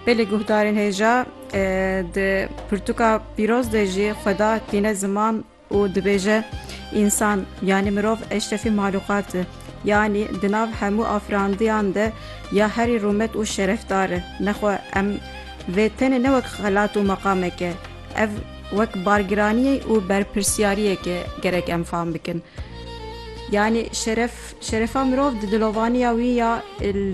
Belê guhdarên hêja di pirtûka pîroz de jî xweda tîne ziman û dibêje însan yanî mirov eşrefî malûqat e yanî di nav hemû afirandiyan de ya herî rûmet û şerefdar e nexwe em vê tenê ne wek xelat û meqamek e ev wek bargiraniyê û berpirsyariyekê gerek em fam bikin yanî şeref Şerefa mirov di dilovaniya wî ya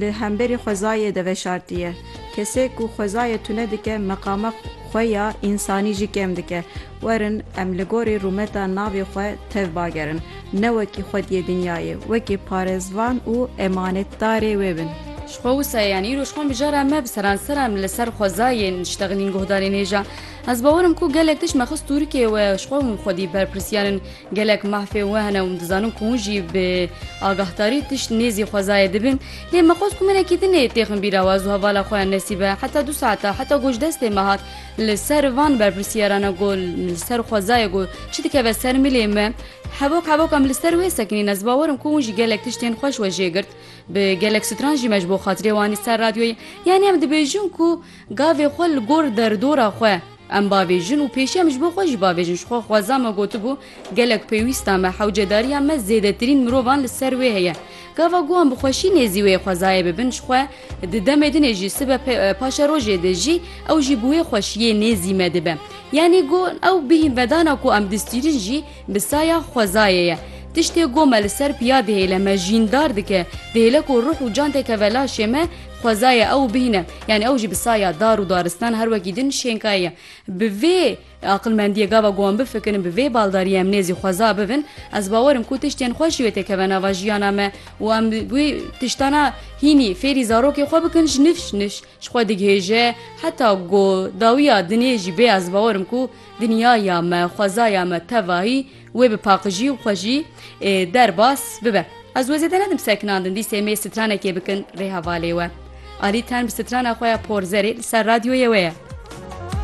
li hemberî xwezayê de veşartiye. Kesê ku xwezayê tune dike meqama xwe ya însanî jî kêm dike. Werin em li gorî rûmeta navê xwe tev bagerin. Ne wekî xwediyê dinyayê, wekî parêzvan û emanetdarê wê bin. Ji xwe wisa ye, yan îro ji xwe mijara me bi seransera em li ser xwezayê niştexînîn guhdarên hêja. Ez bawer im ku gelek tişt me xist tûrikê we ji xwe û xwedî berpirsiyar in. Gelek mahfê we hene û min dizanim ku hûn jî bi agahdarî tişt nêzî xwezayê dibin. Lê me xwest ku minekî din ê têxin bîra we ez û hevala xwe ya Nesîbe heta du saetan heta ku ji destê me hat li ser van berpirsîyarana ku li ser xwezayê ku çi dikeve ser milê me hevok hevok em li ser wê sekinîn ez bawer im ku hûn jî gelek tiştên xweş we jê girt bi gelek stran jî me ji bo xatirê we anî ser radyoyê yanî em dibêjin ku gavê xwe li gor derdora xwe Em bavêjin û pêşî em ji bo xwe jî bavêjin. Ji xwe xweza me gotibû, gelek pêwîsta me, hewcedariya me zêdetirîn mirovan li ser wê heye. Gava guhan bi xweşî nêzî wê xwezayê bibin ji xwe, di demê din ê jî sibe paşa rojê de jî ew jî bi wê xweşiyê nêzî me dibe. Yanî got ew bihînvedana ku em distîrin jî, Bi saya xwezayê ye. Tiştê ku me li ser piya dihêle, me jîndar dike, dihêle ku ruh û can tê keve laşê me, xwezayê ew bihîne. Yanî ew jî bi saya dar û daristan her wekî din şênkayî ye. Bi vê aqilmendiyê gava ku em bifikirin, bi vê baldariyê em nêzî xweza bibin, ez bawer im ku tiştên xweş jî wê tê keve nava jiyana me û em wê tiştana hînî fêrî zarokê xwe bikin ji nifş nifş. Ji xwe digihêje heta ku dawiya dinê jî bê ez bawerim ku dinyaya me, xwezaya me tevahî wê bi paqijî û xwejî derbas bibe. Ez wê zêde nedim sekinandin dîsê mê stranekê bikin rê hevalê we. Alî tenb strana xwe ya porzerê li ser radyoyê we ye.